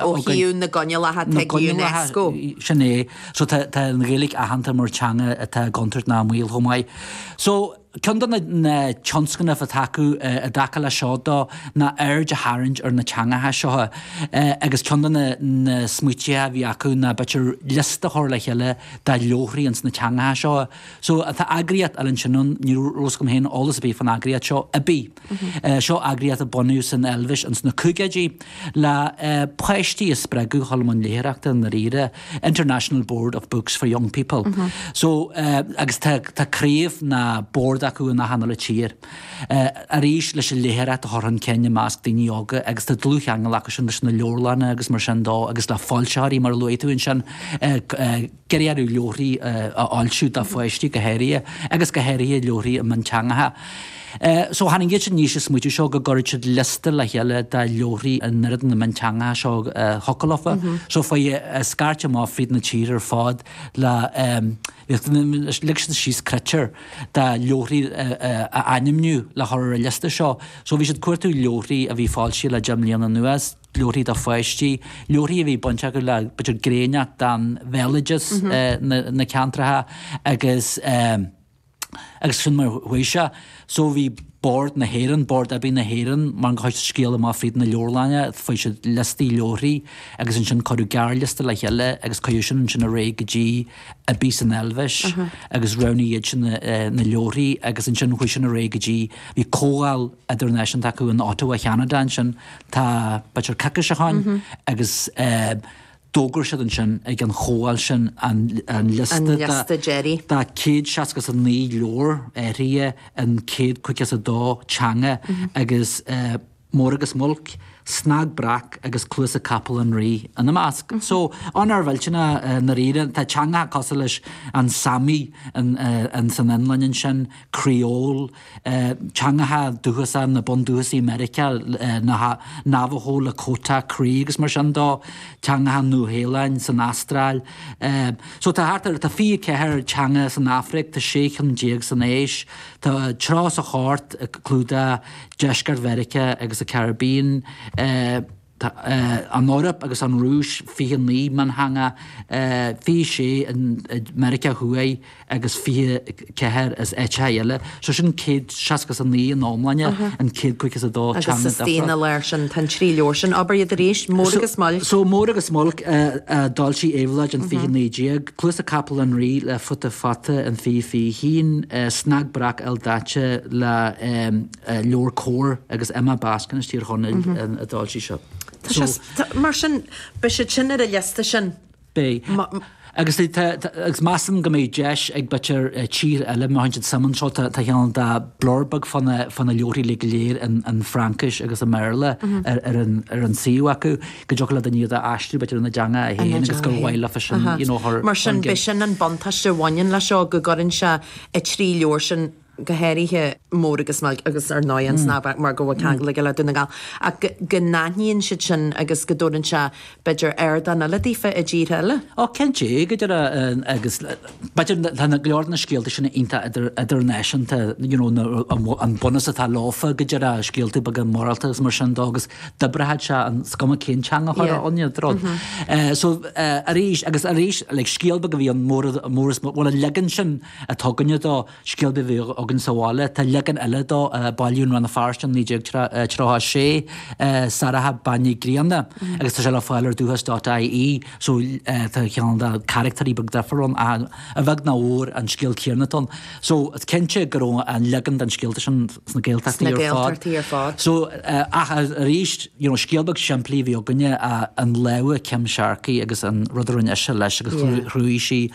ó thaobh na gcoinníollacha atá ag Unesco. Sin é. So tá an Ghaeilge aitheanta mar teanga atá i gcontúirt ná i mbaol chomh maith. So ceann de na tionscnaimh atá acu i dtaca leis seo dó ná aird a tharraingt ar na teangacha seo agus ceann de na smaoitithe a bhí acu ná b'fhéidir liosta a chur le chéile de leabharthaí ins na teangacha seo. So tá eagraíocht eile ansin ann, ní raibh fhios agam féin eolas ar bith faoin eagraíocht seo, IBBY. Seo eagraíocht a bunaíodh san Eilvéis ins na caogaidí le páistí a spreagadh chun an léitheoireachta i ndáiríre, International Board of Books for Young People. So, agus tá craobh ná bord acu in achan uile tír. Arís, leis an léitheoireacht a chur chun cinn i measc daoine óga agus tá dlúthcheangal acusan leis na leabharlanna agus mar sin dó agus le foilsitheoirí mar a luaigh tú ansin. Dírithe ar leabharthaí a fhoilsiú do pháistí go háirithe agus go háirithe leabharthaí i mionteangacha. So tháinig iadsan aníos leis an smaoitiú seo go gcuirfeadh siad liosta le chéile de leabharthaí in oiread de na mionteangacha seo a thiocfadh leofa. So chuaigh an scairt amach fríd na tíortha ar fad le leag siad síos critéir de leabharthaí a ainmniú le chur ar an liosta seo. So bhí siad ag cuartú leabharthaí a bhí foilsithe le deich mbliana anuas. leabharthaí do pháistí, leabharthaí a bhí bainteach le b'fhéidir gné inteacht den bhéaloideas na ceantracha agus agus sin mar a chuaigh sé. So bhí Bord na hÉireann, Bord IBBY na hÉireann mar gur chuir siad scéal amach fríd na leabharlanna, fuair siad liostaí leabharthaí agus ansin cuireadh gearrliosta le chéile agus cuireadh sin ansin ar aghaidh go dtí IBBY san Eilvéis agus roghnaigh iadsan na leabharthaí agus ansin chuaigh sin ar aghaidh go dtí, bhí comhdháil. idirnáisiúnta acu in Ottawa Cheanada ansin. Tá b'fhéidir coicís ó shin agus d'fhógair siad ansin ag an chomhdháil sin an liosta de céad seasca is a naoi leabhar áirithe in céad caoga is a dó teanga agus Mór agus Muilc, Snag Breac agus Cluasa Capaill an Rí ina measc. So, onóir mhillteanach i ndáiríre, tá teangacha cosúil leis an Sami san Fhionlainn ansin, Creole, teangacha dúchasach na bundúchasaigh i Meiriceá, na Navajo, Lakota, Cree agus mar sin dó, teangacha an Nua Shéalainn, san Astráil. So tá thart ar, tá 24 teanga san Afraic, tá 16 cheann san Áis, tá 34 ag clúdach Deisceart Mheiriceá agus an Caribbean. Tá an Eoraip agus an Rúis 29 miontheanga, 26 i Meiriceá Thuaidh agus 24 as áiteacha eile, so sin 169 in iomláine in 152 teanga difriúla. So Mór agus Muilc a d'fhoilsigh Éabhlóid in 2019, Cluasa Capaill an Rí le Futa Fata in 2021, Snag Breac Ildaite le. leor comhar agus Emma Baskin as Tír Chonaill a d'fhoilsigh seo. Tá sé, mar sin, beidh siad sin ar an liosta sin. Beidh. Agus tá, agus measaim go mbeidh deis ag b'fhéidir tíortha eile, má tá suim anseo, tá cineál de blurb beag fá na, fá na leabharthaí uilig go léir i bhFraincis agus i mBéarla ar an, ar an suíomh acu, go dtiocfadh le daoine iad a aistriú b'fhéidir ina dteanga féin más gur mhaith leofa sin, you know. Mar sin, beidh sin an buntáiste a bhaineann leis seo, go gcuireann sé na trí leabhar sin, go háirithe mór agus mbeag, agus ar ndóigh an snáth beag mar go bhfuil ceangal aige le Dún na nGall, ach go n-aithníonn siad sin agus go dtabharann sé b'fhéidir ardán eile daofa i dtíortha eile. Ó, cén dtigh idir a, agus b'fhéidir tá go leor de na scéalta sin iontach idirnáisiúnta, you know, an bunús atá leofa go dtig scéalta beaga morálta agus mar sin de agus d'oibreochadh sé in, 's cuma cén teanga chor a fhoghlaimíod do rud. So arís agus arís like scéal beag a bhí ann mór mór, is, bhuel an leagan sin a rinneadh dó, Scéal beag a bhíodh againn sa bhaile. Tá leagan eile de a bailíodh in Rann na Feirste in 1936, Sorcha Bhean Uí Ghrianna, agus tá sé le fáil ar Dúchas.ie so tá ceann de na carachtaeirí beag difriúil ann ach a bheag ná a mhór an scéal céanna atá ann. So is cinnte go raibh an leagan den scéalta sin sna Gaeltachtaí ar fad. So ach arís you know scéal beag simplí a bhí againne i lámha Kim Sharkey agus an rud a rinne ise leis agus chruthaigh sí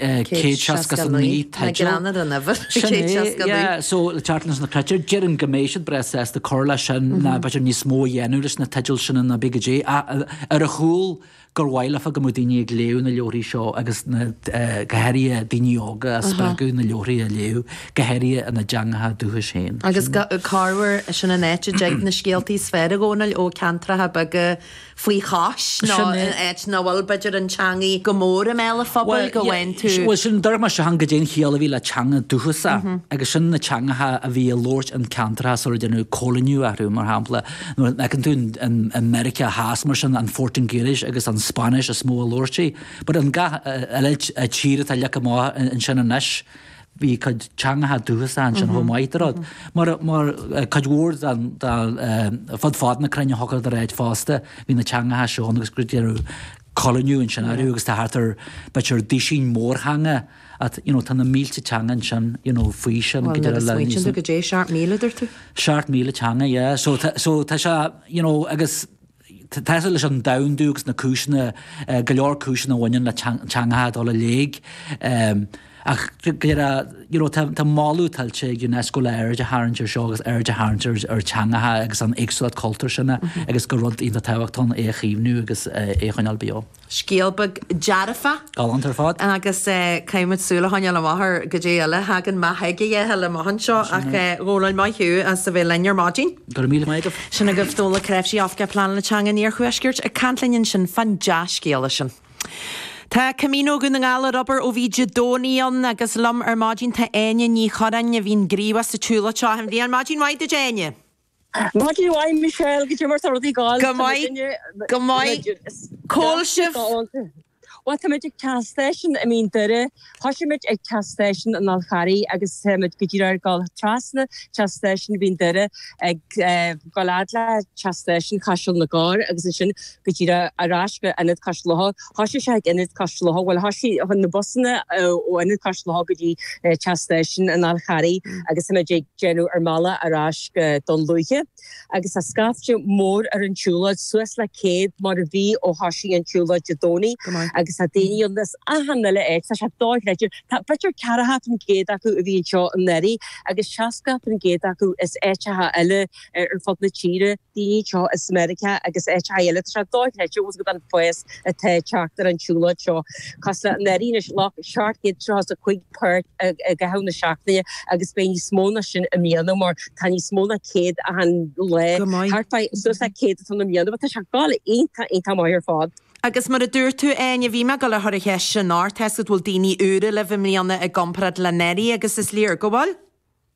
169, teideal. Sin é, yeah, so le teacht leis na critéir, déarfainn go mbeidh siad breá sásta cur leis sin, nó b'fhéidir níos mó a dhéanamh leis na teidil sin nó cibé caidé. Ach ar a chúl, gur mhaith leofa go mbeadh daoine ag léamh na leabhraí seo agus na, go háirithe daoine óga a spreagadh na leabhraí a léamh, go háirithe ina dteangacha dúchais féin. Agus go, corruair, sin an áit a dtig na scéaltaí is fearr go hiondúil ó ceantracha beaga. faoi chois nó in áit ina bhfuil, b'fhéidir, an teangaidh go mór i mbéal an phobail, go bhfaigheann tú. Bhuel, sin a deireadh muid a thagann go dtí an chiall a bhí le teanga dúchasach agus sin na teangacha a bhí á labhairt i gceantartha sular déanadh cóiliniú orthu, mar shampla, nuair fheiceann tú i Meiriceá Theas mar sin, an Phortaingéilis agus an Spáinnis is mó a labhartar but in gach uile tír atá leagtha amach ansin anois, bhí cuid teangacha dúchasa ansin chomh maith le rud, mar, mar, cuid mhór den, den eh, fud fad na cruinne i ngach dara háit fosta, bhí na teangacha seo ann agus gur déanadh coilíniú ansin aréir agus tá thart ar, b'fhéidir duisín mórtheanga ann, you know, tá na mílte teanga ansin, you know, faoi sin, go Bhuel, díreach agus nuair a smaoitíonn tú na, caidé seacht míle duirt tú? seacht míle teanga, yeah, so tá, so tá sé, you know, agus Tá sin leis an domhandú agus na cúiseanna, go leor cúiseanna a bhaineann le teangacha a dhul i léig. Ach go díreach, you know, tá moladh tuillte ag Unesco le aird a tharraingt ar seo agus aird a tharraingt ar teangacha agus an éagsúlacht cultúir sin agus gur rud iontach tábhachtach é a chaomhnú agus é a choinneáil beo. Scéal beag dearfach. Galánta ar fad. Agus caithfimid súil a choinneáil amach ar goidé eile a thagann amach ag a dhéithe amach anseo. Ach go fóill maith thú as a bheith linn ar maidin. Go raibh míle maith agat. Sin agaibh Dónall Ó Cnáimhsí, Oifigeach Pleanála Teanga an Iarthuaiscirt, ag caint linn ansin fán dea-scéala sin. Tá Camino Dhún na nGall ar obair ó bhí Dé Domhnaigh ann agus liom ar maidin tá Áine Ní Churráin a bhíonn gníomhach sa tsiúlóid seo achan bhliain. Maidin mhaith duit, Áine! Maidin mhaith Michelle. Goidé mar tá rudaí ag gabháil? Go maith, go maith. Cá bhfuil sibh? Bhuel táimid ag teach stáisiún i Mín Doire. Thoisigh muid ag teach stáisiún an Fháil Charraigh agus táimid go díreach ag dul trasna teach stáisiún Mhín Doire ag dul fhad le teach stáisiún Chaiseal na gCorr agus ansin go díreach ar ais go Ionad Cois Locha. Thoisigh sé ag Ionad Cois Locha, bhuel thoisigh na busanna ó Ionad Cois Locha go dtí teach stáisiún an Fháil Charraigh agus tá muid ag déanamh ár mbealaigh ar ais go Dún Lúiche agus tá scaifte mór ar an tsiúlóid, suas le céad mar a bhí ó thoisigh an tsiúlóid Dé Domhnaigh agus tá daoine ann as achan uile áit, tá sé dochreidte. Tá b'fhéidir ceathracha faoin gcéad acu a bhí anseo anuraidh agus seascacha faoin gcéad acu as áiteacha eile. ar fud na tíre, daoine anseo as Meiriceá agus áiteacha eile. Tá sé do-chreidte ós rud é an fás atá ag teacht ar an tsiúlóid seo. Tá sé anuraidh ghlac 735 páirt i gcaitheamh na seachtaine agus beidh níos mó ná sin i mbliana mar tá níos mó ná 100 achan lá, thart fá suas le 100 atá ann i mbliana. Bhuel tá sé ag dul iontach iontach maith ar fad. Agus mar a dúirt tú Áine, bhí mé ag gabháil a chur an cheist sin ort, tásc go bhfuil daoine úra libh i mbliana i gcomparáid le anuraidh agus is léir go bhfuil.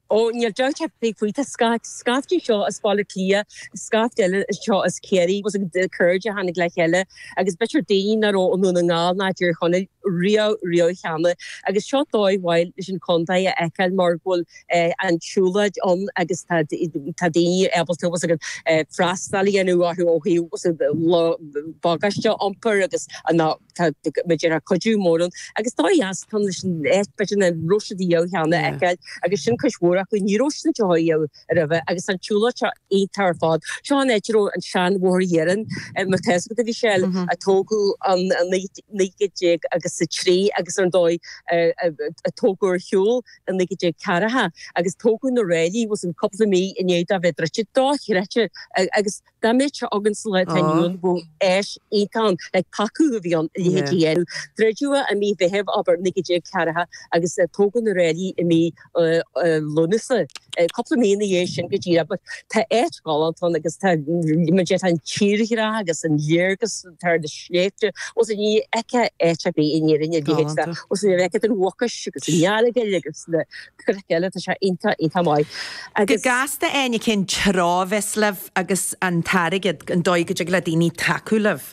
Ó, níl dabht ar bith faoi, tá scata, scaifte anseo as Baile Átha Cliath, scaifte eile anseo as Ciarraí, agus cairde a tháinig le chéile, agus b'fhéidir daoine nach raibh i nDún na nGall ná i dTír Chonaill riamh, riamh cheana, agus seo dóigh mhaith leis an Chontae a fheiceáil mar go bhfuil an tsiúlóid ann agus tá daoine ábalta freastal a dhéanamh orthu ó thaobh bagáiste a iompar agus. Tá muid ar ár cuidiú mórán agus dóigh dheas táim leis an áit b'fhéidir nach raibh siad ariamh cheana a fheiceáil agus sin cuid mhór acu. Ní raibh siad anseo ariamh roimhe. Agus tá an tsiúlóid seo iontach ar fad. Seo an áit a raibh an seanbhóthar iarainn mar tá a fhios agat a bhí seal a tógadh i 1903 agus ar ndóigh a tógadh ar shiúl i 1940 agus tógadh na ráillí suas cúpla mí i ndiaidh dó bheith druidte. Dochreidte agus Dá mbeadh sé againn sa lá atá inniu ann bheadh áis iontach ann le tacú do mheon a leithéid a dhéanamh. Druideadh i mí Mheithimh abair 1940 agus tógadh na ráillí i mí Lúnasa, cúpla mí ina dhiaidh sin go díreach. But tá áit ghalánta ann agus tá an tírdhreach agus an léargas thar na sléibhte, bhuel ní fheicfeá áit ar bith in Éirinn a leithéid de, bhuel ní fheicfeá den Mhucais agus an Earagail agus na. Cnoic eile, tá sé iontach, iontach maith agus. Cás do éinne cén tráth a bheas libh agus an t-airgead, an dóigh go dtig le daoine tacú libh?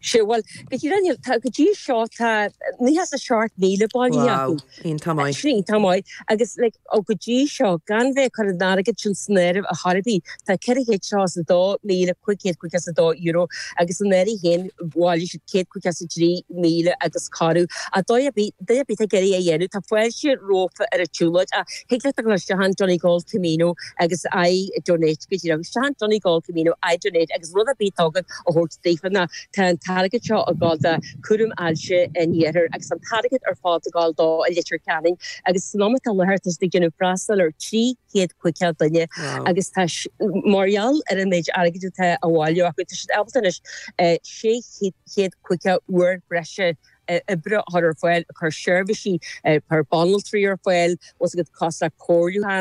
Sea, bhuel, go dtí rinne, tá, go dtí seo tá, nócha is a seacht míle bailithe acu. Wow, iontach maith. Sin iontach maith agus like, ó go dtí seo, gan bheith ag cur an airgead sin san áireamh a chor ar bith, Tá ceithre chéad agus €2,552 agus anuraidh féin bhailigh siad céad caoga is a trí míle agus corradh. Ach dóigh ar bith, duine ar bith ag iarraidh é a dhéanamh, tá fáilte rompu ar an tsiúlóid. Ach thig leat a dhul isteach in Donegal Camino agus I donate go díreach isteach in Donegal Camino I donate agus rud ar bith atá agat a thabhairt daofa nó tá an t-airgead seo a dhul do Cúram Ailse an Iarthair agus an t-airgead ar fad a dhul dó i Leitir Ceanainn agus san am atá i láthair tá siad ag déanamh freastal ar trí chéad caoga duine agus tá mar gheall ar an méid airgid atá á bhailiú acu tá siad ábalta anois sé chéad caoga uair breise oibre a chur ar fáil, ag cur seirbhísí banaltraí ar fáil, os a gcuid cás le comhairliúchán.